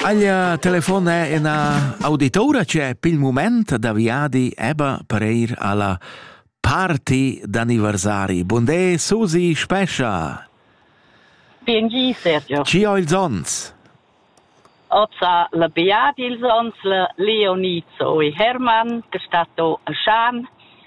Aglia telefon è ina auditoura c'è pil moment da viadi eba per ir alla party d'anniversari. Bondé, Susi Spescha. Bengi, Sergio. Ci ho ils ons. Oza la Beat ils ons, la Leonizzo e Hermann, che sta to a Schan,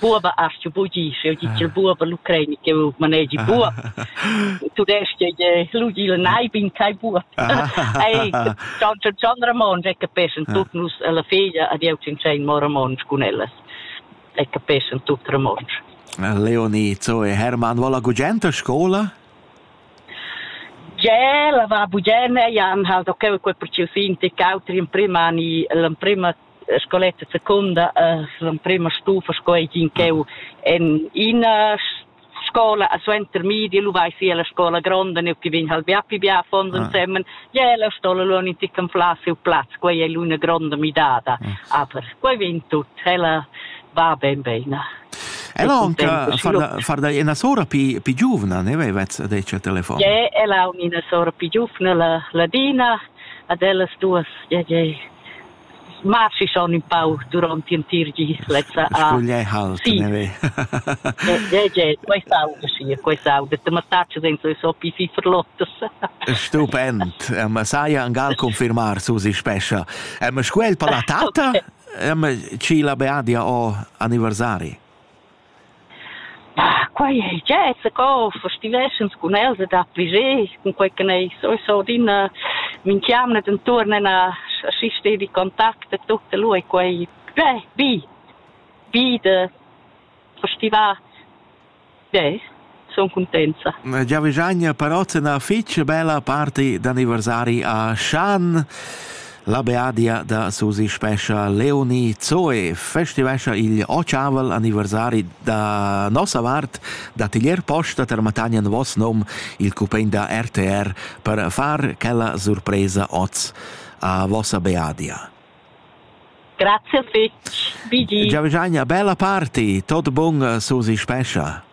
buoba hast du bugi sch'el dit il buoba l'ucraini che manegi buob tu desch che je lugi il nai bin kai buob ei Gian Gian Ramon è capessen tut nus alla figlia ad eu cin sein mo Ramon cun ellas è capessen tut Ramon Leonie so e Hermann vola gugent a scola Ge la va bugene Jan halt okay quel per ci fin te cautri in prima ni l'prima scoletta secunda l'emprema stufa sco ei din cheu en ina scola a suenter midi lu vai si alla scola gronda ne che vegn hal bia pi bia fondo ah. insemmen je la scola lu in tican pla seu plaz quei è l'una gronda midada ah. aber quei vegn tut ella va ben bene Ella anche far far da una sora più più giovane ne aveva detto telefono. Je, ella è una sora più giovane, la Ladina, ad ella duas, je, je, ma si schon un pau durant l'entir gis lezza a Gugliei Hall sì. questa auda sì questa auda te mattaccia senza le so più ferlottas stupend eh, ma sai angal confirmar su si spescha eh, ma squel per la tatta eh, ma ci la beadia o anniversari Quai ei gie zacco, festiveschens cun els e dapli gie, cunquei che ei sowieso adina minchiamna dentuorn ena aschi stedi contact e tut e lu ei quei gie bi, bi da festivar. Gie. Son cuntenza. Giavischagna Parozzena fich bella party d'anniversari a Schan. La beadia da Susi Spescha Leonie Zoe festivescha il ocavel anniversari da nossa vart da tiglier posta per matagnan vos nom il cupen da RTR per far quella surpresa oz a vossa beadia. Grazie fitch. BG. Giavischagna, bella party, tot bung Susi Spescha.